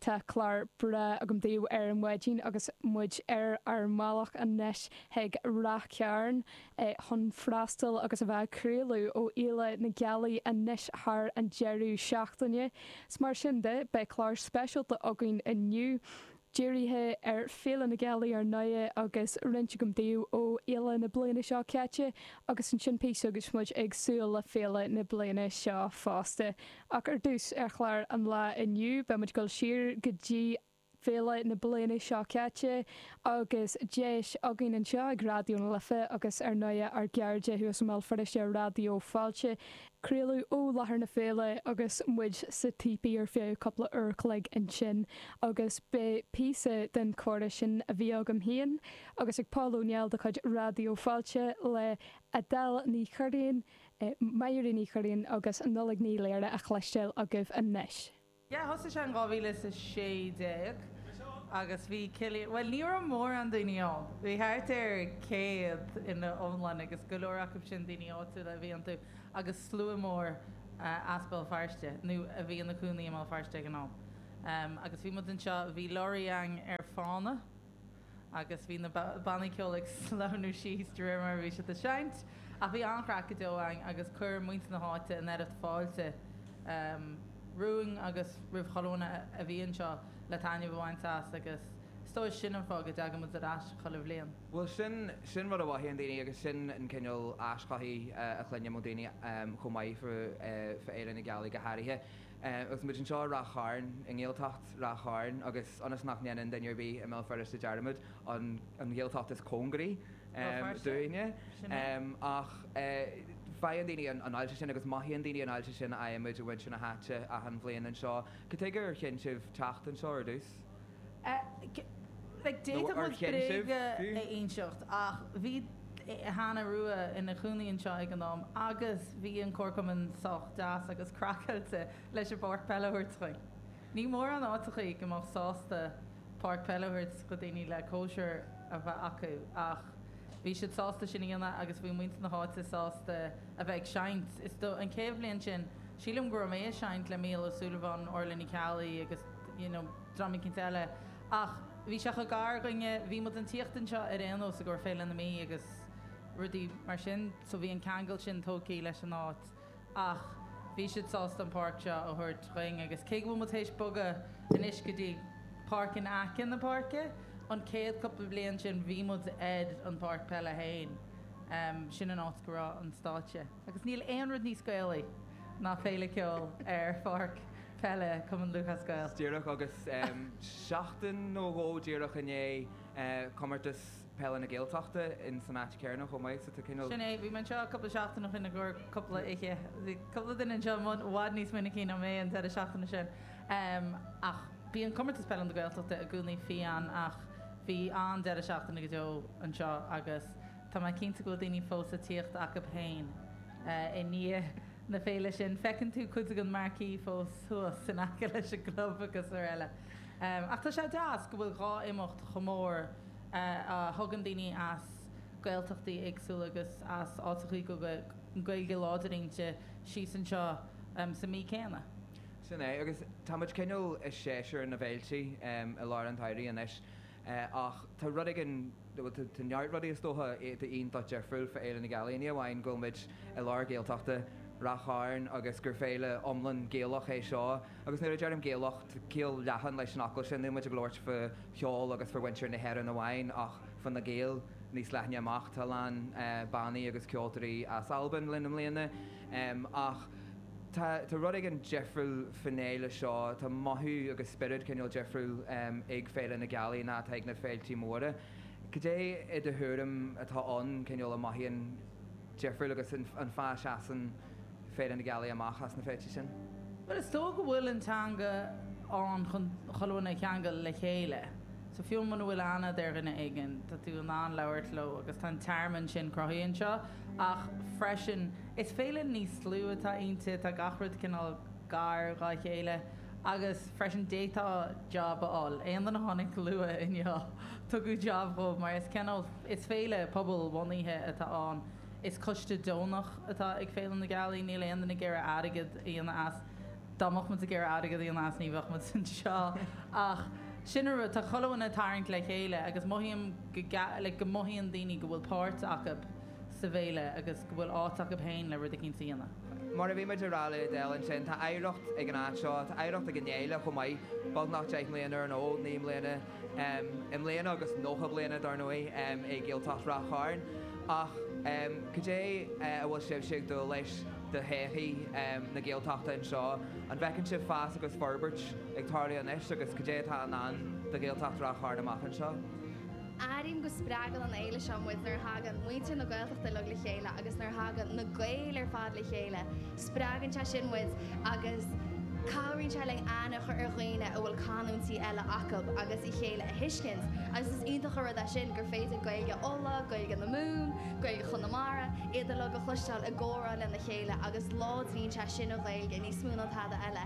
Tá clár breá agam daoibh ar maidin agus muid ar ár mbealach anois chuig Rath Cairn chun freastal agus a bheith ag craoladh ó Fhéile na Gealaí anois thar an deireadh seachtaine. Mar sin de, beidh clár speisialta againn inniu dírithe ar Féile na Gealaí ar ndóigh agus comhrá agam daoibh ó fhéile na bliana seo caite agus ansin píosa agus muid ag súil le féile na bliana seo fosta. Ach ar dtús, ar chlár an lae inniu, beimid ag dul siar go dtí féile na bliana seo caite agus deis againn anseo ag Raidió na Life agus ar ndóigh ár gcairde thuas i mBéal Feirste ar Raidió Fáilte, craoladh ó láthair na féile agus muid sa típí ar feadh cúpla uair chloig ansin agus beidh píosa den comhrá sin a bhí agam féin agus ag Paul Ó Néill de chuid Raidió Fáilte le Edel Ní Churraoin, Máire Ní Churraoin agus Nollaig Ní Laoire le cloisteáil agaibh anois. Yeah, thosaigh sé in dhá mhíle is a sé déag agus bhí Cillian, bhuel ní raibh mórán daoine ann, bhí thart ar céad ina iomlán agus go leor acu sin daoine áitiúla a bhí iontu agus slua mór as Béal Feirste nó a bhí ina gcónaí i mBéal Feirste ag an am. Agus bhí muid anseo, bhí lorry againn ar fána, agus bhí na bannaí ceoil ag sleamhnú síos de réir mar a bhí siad ag seinnt, ach bhí an-chraic go deo againn agus chuir muintir na háite an oiread fáilte romhainn agus roimh chuile dhuine a bhí anseo le taitneamh a bhaint as agus is dóigh sin an fáth go dtagann muid ar ais chuile bhliain. Bhuel, sin, sin rud a mhothaíonn daoine agus sin an cineál aischothaithe a chluinim ó dhaoine chomh maith fá Fhéile na Gealaí go háirithe. Agus muid anseo i Rath Chairn, i nGaeltacht Rath Chairn, agus ionas nach ndéanann duine ar bith i mBéal Feirste dearmad, an Ghaeltacht is cóngaraí dúinne, ach faigheann daoine an fháilte sin agus mothaíonn daoine an fháilte sin a fhaigheann muid ó mhuintir na háite achan bhliain anseo. Cad tuige ar chinn sibh teacht anseo ar dtús? nó ar chinn sibh fiú? a inseacht ach bhí Hannah Rua ina cónaí anseo ag an am agus bhí an comharchumann sách deas agus craiceáilte leis an bpáirc peile a thabhairt chugainn. Ní mórán áiteacha go mbeadh sásta páirc peile a thabhairt do dhaoine le cóisir a bheith acu ach bhí siad sásta sin a dhéanamh agus bhí muintir na háite sásta a bheith ag seinnt. Is do an chéad bhliain sin sílim go raibh mé ag seinnt le Mícheál Ó Súilleabháin, Orla Ní Cheallaigh agus. you know dream eicínt eile ach bhí sé chomh gar dhuinne, bhí muid ag tíocht anseo ar aon nós i gcomhair Féile na Mí agus rudaí mar sin so bhí an ceangal sin tógthaí leis an áit ach bhí siad sásta an páirc seo a thabhairt dhuinn agus cé go bhfuil muid théis bogadh anois go dtí páirc in aice na páirce, an céad cúpla bliain sin bhí muid ar an páirc peile fhéin, em sin an áit go raibh an stáitse. Agus níl aon rud níos Gaelaí ná féile ceoil ar pháirc peile Cumann Lúthchleas Gael. Díreach agus seachtain nó dhó díreach i ndiaidh Comórtas Peile na Gaeltachta in san áit céanna chomh maith. So tá cineál. Sin é, bhí mé anseo cúpla seachtain ó shin i gcomhair cúpla oíche. Bhí cúpla duine anseo i bhfad níos minicí ná mé an deireadh seachtaine sin. Ach bíonn Comórtas Peile na Gaeltachta i gcónaí fiáin ach bhí an-deireadh seachtaine go deo anseo agus. Tá mé cinnte go bhfuil daoine fós le tíocht acab fhéin i ndiaidh na féile sin. Feiceann tú cuid den marquee fós thuas in aice leis an gclub agus araile. Ach tá sé deas go bhfuil dhá imeacht chomh mór a thugann daoine as Gaeltachtaí éagsúla agus as áiteachaí go bhfuil Gaeilge láidir iontu síos anseo sa mí céanna. Sin é, agus tá muid cineál i séasúr na bhféiltí i lár an tsamhraidh anois. Ach tá rud éigin, bhuel tá neart rudaí is dócha, iontach difriúil fá Fhéile na Gealaí. Ní amháin go bhfuil muid i lár Gaeltachta, Rath Chairn, agus gur féile iomlán Gaelach é seo, agus nuair a deirim Gaelach, tá ciall leathan leis an fhocal sin, níl muid ag labhairt fá cheol agus fá mhuintir na hÉireann amháin, ach fá na Gaeil níos leithne amach. Tá a lán bannaí agus ceoltóirí as Albain linn i mbliana. Tá rud éigin difriúil faoin fhéile seo, tá mothú agus spiorad cineál difriúil ag Féile na Gealaí ná atá ag na féiltí móra. Cad é do thuairim atá ann cineál a mothaíonn difriúil agus an fáth a seasann Féile na Gealaí amach as na féilte sin? Bhuel is dóigh go bhfuil an teanga ann chun chuile dhuine a cheangal le chéile. So fiú muna bhfuil aithne agat ar dhuine éigin tá tú in ann labhairt leo agus tá an tearmann sin cruthaithe anseo ach freisin, Is féile níos lú atá inti, tá gach rud cineál gar dhá chéile agus freisin d'fhéadfá job a fháil. Aon duine a tháinig luath inniu, tugadh job dhó mar is cineál, is féile pobalbhunaithe atá ann. Is coiste deonach atá ag Féile na Gealaí, níl aon duine ag iarraidh airgead a dhéanamh as, dá mbeadh muid ag iarraidh airgead a dhéanamh as ní bheadh muid anseo ach sin a rud, tá chuile dhuine ag tarraingt le chéile agus mothaím go like go mothaíonn daoine go bhfuil páirt acab. sa bhféile agus go bhfuil áit acub fhéin le rud eicínt a dhéanamh. Mar a bhí muid a rá le Adele ansin, tá oidhreacht ag an áit seo, tá oidhreacht ag an fhéile chomh maith, beagnach deich mbliana ar an fhód, naoi mbliana i mbliana agus nócha bliana dar ndóigh i nGaeltacht Ráth Chairn. Ach cad é a bhfuil sibhse ag dúil leis do thodhchaí na Gaeltachta anseo? An bhfeiceann sibh fás agus forbairt ag tarlú anois agus cad é atá i ndán do Ghaeltacht Ráth Chairn amach anseo? Airím go spreagann an fhéile seo muid nuair a thagann muintir na Gaeltachta uilig le chéile agus nuair a thagann na Gaeil ar fad le chéile. Spreagann sé sin muid agus cabhraíonn sé linn aithne a chur ar dhaoine a bhfuil canúintí eile acu agus a chéile a thuiscint agus is iontach an rud é sin gur féidir Gaeilge Uladh, Gaeilge na Mumhan, Gaeilge Chonamara, iad uilig a chloisteáil ag comhrá lena chéile agus láidríonn sé sin an Ghaeilge níos mó ná tada eile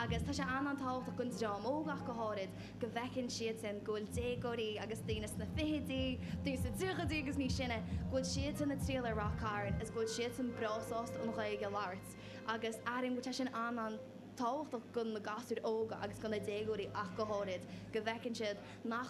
agus tá sé an-an-tábhachtach don dream óg ach go háirid. go bhfeiceann siadsan go bhfuil déagóirí agus daoine sna fichidí, daoine sna tríochaidí agus níos sine, go bhfuil siadsan ag triall ar Ráth Cairn agus go bhfuil siadsan breá sásta an Ghaeilge a labhairt agus airím go bhfuil sé sin an-an-tábhachtach go na gasúir óga agus go na déagóirí ach go háirid, go bhfeiceann siad nach.